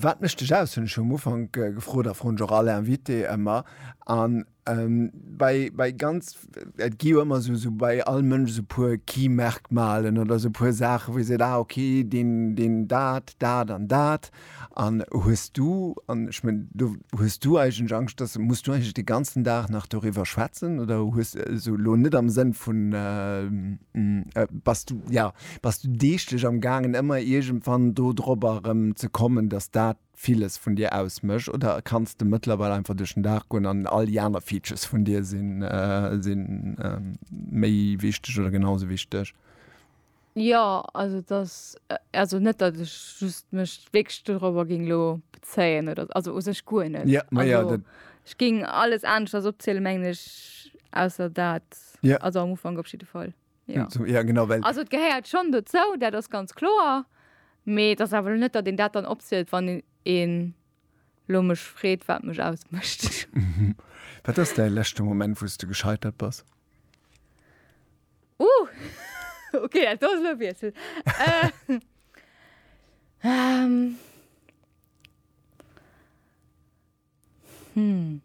Wat mécht dech aus, hunn ech jo um Ufank gefrot a froen ech och all Invité ëmmer. An bei, bei ganz, et gi jo ëmmer esou, esou bei all Mënsch esou puer Key Merkmalen oder esou puer Saachen, wou ee seet, ah ok, deen, deen dat, dat an dat. An hues du, an ech mengen, do hues du eigentlech Angscht, dass, muss du eigentlech de ganzen Dag nach doriwwer schwätzen oder hues, also elo net am Sënn vun, bass du, jo. Bass du deeglech am gaangen ëmmer iergendwann do drobber erëm ze kommen, dass dat villes vun dir ausmécht oder kanns de mëttlerweil einfach duerch den Dag goen an all déi aner Features vun dir si méi wichteg oder genau sou wichteg? Jo, also et ass also net dat ech just mech wierklech do drobber géing elo bezéien oder also u sech guer net. Jo, ma jo, dat. Ech géing alles aneschters opzielen mengen ech ausser dat, also am Ufank op jidde Fall. Ja. So, ja genau, well Also et gehéiert schon dozou, dat ass ganz kloer. Mee et ass awer lo net, datt een dat dann opzielt, wann een een lo mech freet, wat mech ausmécht. wat ass däi leschte Moment, wou s du gescheitert bass? Uh, okay, dat do ass lo e Wiessel. Äh, ähm, Hm.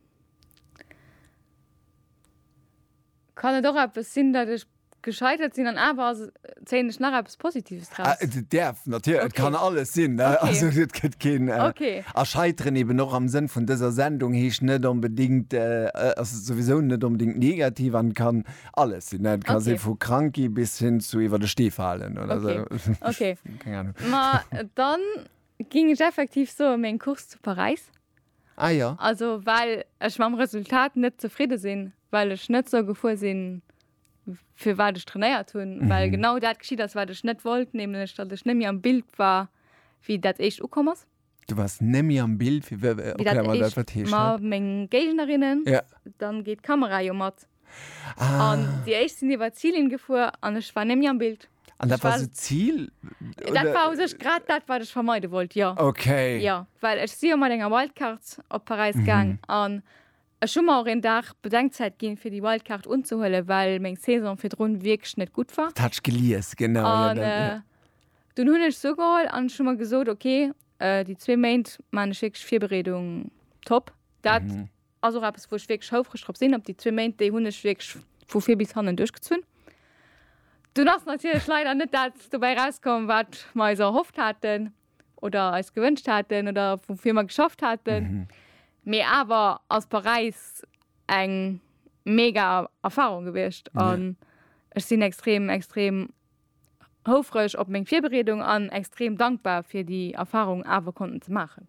Kann et och eppes sinn, datt ech gescheitert sinn an awer ass, zéien ech nach eppes Positives Ah, draus? et däerf natierlech, et kann Okay. alles sinn, ne? Okay. Also et gëtt keen. Okay. A scheiteren eben och am Sënn vun dëser Sendung heescht net onbedingt, ass souwisou net onbedingt negativ an kann alles sinn, ne? Et ka si Okay. vu krank gi bis hin zu iwwer de Stee falen oder esou. Okay. Okay. Keng Ahnung. Ma dann Ging ech effektiv soen, meng Course zu Paräis. Ah jo. Also well ech mam Resultat net zefridde sinn, well ech net sou gefuer sinn, fir wat ech trainéiert hunn, well genau dat geschitt ass, wat ech net wollt, nämlech datt ech net méi am Bild war, wéi dat éischt ukomm ass. Du wars net méi am Bild, wéi dat éischt, ma meng Géignerinnen, dann geet d'Kamera jo mat. An Ah. déi éischt sinn iwwer d'Zilinn gefuer an ech war némmi am Bild. An dat Ech war war- sou Zil? Dat war u sech grad dat, wat ech vermeide wollt, jo. Okay. Jo, well ech si jo mat enger Wildcard op Paräis gaang an ech hu mer och een Dag Bedenkzäit ginn, fir déi Wildcard unzehuelen, well meng Saison virdrun wierklech net gutt war. Dat hat ech gelies, genau. Jo, An dat, jo. äh, dunn hunn ech se ugeholl an ech hu mer gesot, okay, äh, déi zwee Méint maan ech wierklech Virbereedung top. Dat Ass och eppes wou ech wierklech houfreg drop sinn. Op déi zwee Méint, déi hunn ech wierklech vu vir bis hannen duerchgezunn. Dunn ass natierlech leider net dat dobäi erauskomm wat mer eis erhofft haten oder eis gewënscht haten oder woufir mer geschafft haten. Mee awer ass Paräis eng mega Erfarung gewiescht an ech sinn extrem extrem. houfreg op meng Virbereedung an extrem dankbar fir déi Erfahrung awer konnten ze maachen.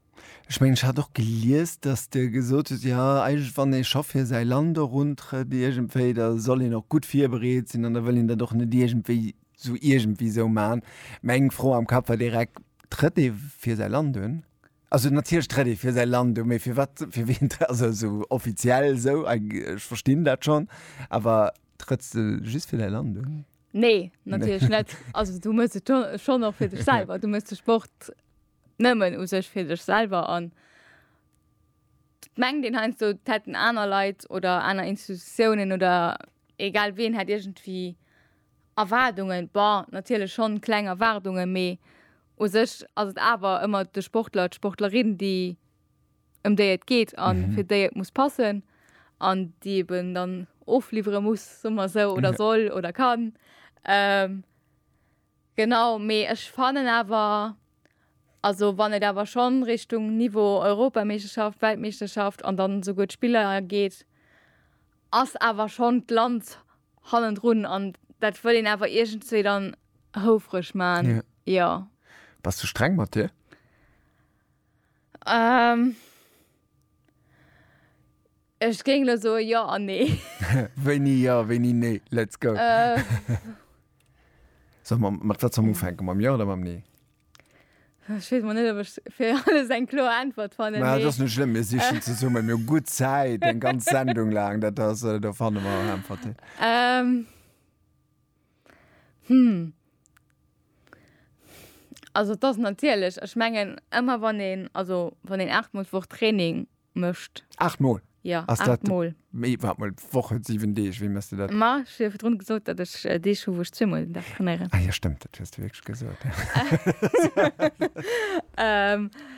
Ech mengen ech hat och gelies dass de gesot hues jo eigentlech wann ee scho fir säi Land eruntrëtt iergendwéi da soll een och gutt virbereet sinn an da wëll een dat och net iergendwéi sou iergendwéi sou man. Meng Fro am Kapp war direkt, trëtt ee fir säi Land un? Also natierlech trëtt ee fir säi Land un, mee fir wat fir wien trëtt also sou offiziell sou ech verstinn dat schonn awer trëtts de just fir däi Land un? Nee, natierlech net. Also du muss et schon noch fir dech selber. Du muss de Sport nëmmen u sech fir dech selber an meng den heinsdo hätten aner Leiit oder aner Institutionen oder egal ween hätt irgendwie Erwaardungen. Bon, natierlech schon kleng Erwaardungen, mee u sech ass et awer ëmmer de Sportler, d'Sportlerin, déi ëm déi et geet an mhm. fir déi et muss passen an die eben dann ofliefere muss sommer so oder ja. soll oder kann ähm, genau me ech fannen aber also wann et aber schon richtung niveau europameisterschaft weltmeisterschaft an dann so gut spieler geht ass aber schon land hannen run an dat will den aber irgendzwe dann houfrech man ja, ja. was du streng mat dir Ähm. Ech géing elo soe jo an nee. Wéini jo, wéini nee? Let's go. Äh. Sot mer, mat wat soll mer ufänken, mam jo oder mam nee? Ech weess emol net, ob ech fir alles eng kloer Äntwert fannen. Mä et ass net schlëmm, mir sichen zesummen. Mir hu gutt Zäit, eng ganz Sendung laang. Dat ass, do fanne mer Äntwerten. Ähm. Hm. Also et ass natierlech, ech mengen ëmmer wann een, also wann een 8 mol d'Woch Training mécht. 8 mol? Jo, 8 mol. Mee waart mol, d'Woch huet 7 Deeg, wéi méchs de dat? Ma ech hu jo virdrun gesot, datt ech Deeg hu wou ech zwee mol den Dag trainéieren. Ah jo stëmmt, dat hues de wierklech gesot.